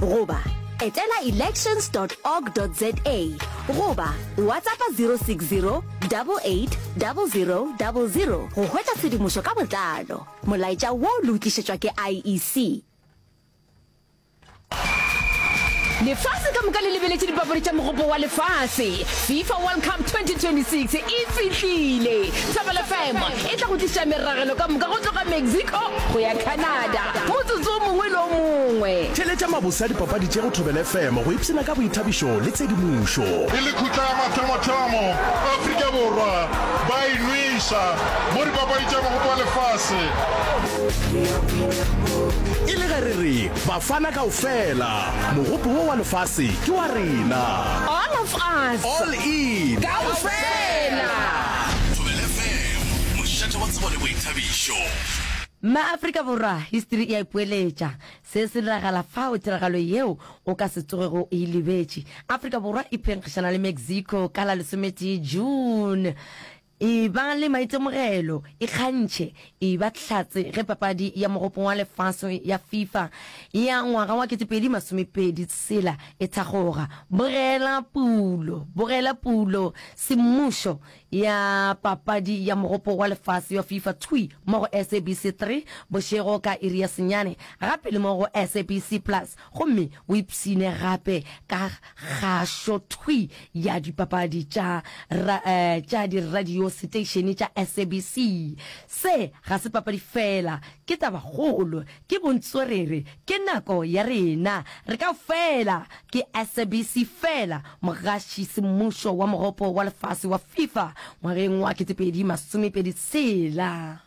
goba etela elections org za goba whatsappa 060 880000 go hwetša tshedimošo ka botlalo molaetša wo le o tlišetšwa ke iec lefase ka moka le lebeletše dipapadi tša mogopo wa lefase fifa world cup 2026 e fihlile thobelefm e tla go tliša meragelo ka moka go tloga Mexico go ya Canada, motsotso o mongwe le o mongwe. Theeletša mabose a dipapadi tše go Thobela FM go ipshina ka boithabišo le tshedimošo. E le khutla ya mathomothomo, Afrika Borwa ba a inweša mo dipapadi tša Mogopo wa Lefase. E le ge re re, Bafana kaofela, Mogopo wo wa Lefase ke wa rena! All of us. All in. Kaofela. Neo, mošate wa tsebo le boithabišo. MaAfrika Borwa, History e a ipoeletša. Se se diragala fao, tiragalo yeo o ka se tsogego o e lebetše. Afrika Borwa e phenkgišana le Mexico ka la lesometee June. E ba le maitemogelo, e kgantšhe, e ba hlatse ge papadi ya Mogopong wa Lefase ya Fifa ya ngwaga wa kete pedi masome pedi tshela e thakgoga. Bogela pulo, bogela pulo, semmušo ya Papadi ya Mogopo wa Lefase ya Fifa thwi mo go SABC 3 bošego ka iri ya senyane, gape le mo go SABC Plus, gomme o ipshine gape ka kgašo thwi ya dipapadi tša tša diradio seteišene tša SABC. Se ga se papadi feela, ke tabakgolo Ke bontswerere, ke nako ya rena, re ka fela, ke SABC fela, mogaši semmušo wa mogopo wa lefase wa FIFA ngwageng wa 2026.